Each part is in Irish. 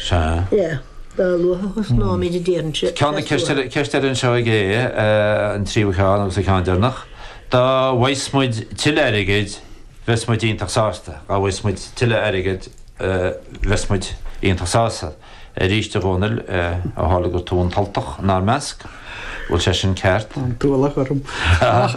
Sea. Dá luaithe a thosnú an méid a dtéann sé. Ceann na ceist orainn, seo é an tríú ceann agus an ceann deireanach. Dá bhfaigheas muid tuilleadh airgid bheas muid iontach sásta. Dá bhfaigheas muid tuilleadh airgid bheas muid iontach sásta. Arís, a Dhónaill, ó tharla gur tú an tUltach inár measc, bhfuil sé sin ceart? An t-ualach orm. Ach.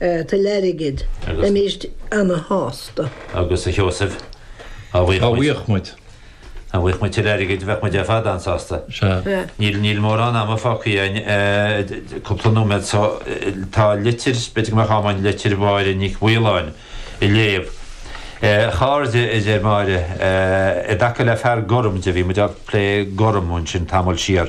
Tuilleadh airgid, bheimis ana-shásta. Agus a Sheosaimh, dá bhfaigheadh muid. Dá bhfaigheadh muid. Dá bhfaigheadh muid tuilleadh airgid bheadh muid ar fad an-sásta. Sea. Níl mórán ama fágtha againn, cúpla nóiméad so tá litir, b'fhéidir go mbeadh am againn litir Mháire Nic Mhaoláin a léamh. A chairde, a deir Máire, i dtaca le fear gorm de, bhí muid ag plé gorm ansin tamall siar,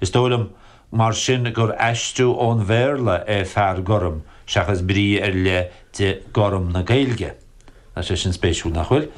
Is dóigh liom, mar sin, gur aistriú ón Bhéarla é fear gorm seachas brí ar leith de 'gorm' na Gaeilge. Tá sé sin spéisiúil, nach bhfuil?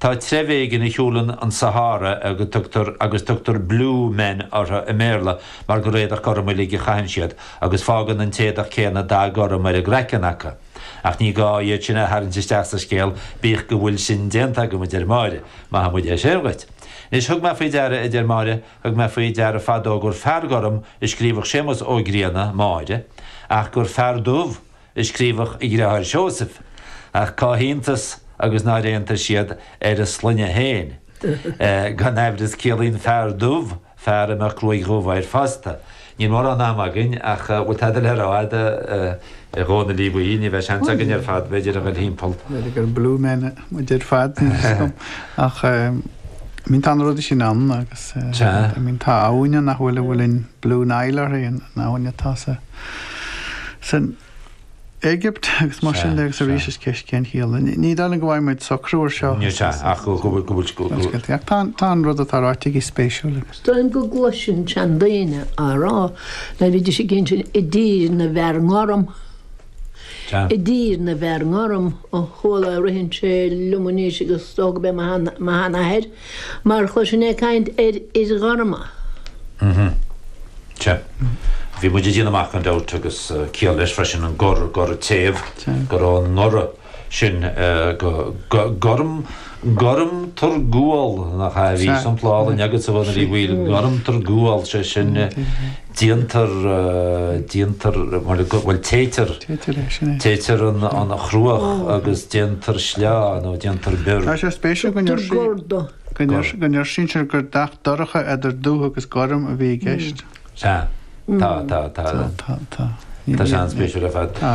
Tá treibh éigin a shiúlann an Sahára agus tugtar 'blue men' orthu i mBéarla mar gur éadach gorm uilig a chaitheann siad agus fágann an t-éadach céanna dath gorm ar a gcraiceann acu. Ach ní gá iad sin a tharraingt isteach sa scéal, bíodh go bhfuil sin déanta agam, a deir Máire. Maithfidh muid é sin dhuit. Anois, thug mé faoi deara, a deir Máire, Thug mé faoi deara fadó gur fear gorm a scríobhadh Séamus Ó Grianna, Máire, ach gur fear dubh a scríobhadh a dhriotháir Seosamh. Ach cá hiontas agus nár aontaigh siad ar a sloinne féin? Gan aimhreas ciallaíonn fear dubh fear a mbeadh gruaig dhubh air fosta. Níl mórán ama againn ach bhfuil tada le rá a'd a Dhónaill Uí Bhaoill, ní bheidh seans againn ar fad b'fhéidir a dhul thimpeall. B'fhéidir gur blue men muid ar fad níl 'fhios a'm ach I mean tá na rudaí sin ann agus I mean tá abhainn ann nach bhfuil a bhfuil an Blue Nile uirthi an abhainn atá sa, san, Éigipt agus mar sin de agus arís is ceist cén chiall. Ní dóigh liom go bhfaighidh muid socrú ar seo. Níl sé ach go bhfuil. Ach tá an rud atá ráite aici spéisiúil agus. Dóigh go gcloisinn seandaoine á rá ná bhídís ag gin sin i dtír na bhfear gorm. I dtír na bhfear gorm ó chuala a ritheann sé liom anois agus dóigh go mbíodh mo sheanathair. Mar chuir sin ag caint ar fhir ghorma. Mhm. Sea. Bhí muid ag déanamh amach gan dabht agus ciall leis freisin an gor, goradh, téamh. Go raibh an goradh sin go gorm, gorm tar gual, nach ea? Bhí sampla álainn agatsa, a Dhónaill Uí Bhaoill, gorm tar gual, sé sin, déantar, déantar, bhuel téitear, téitear an chruach agus déantar sleá nó déantar bior. Tá sé spéisiúil go ndeir sí, go ndeir, go ndeir sí anseo gur dath dorcha eidir dubh agus gorm a bhí i gceist. Sea, tá, tá, tá, tá, tá, tá. Tá sé an-spéisiúil ar fad. Tá.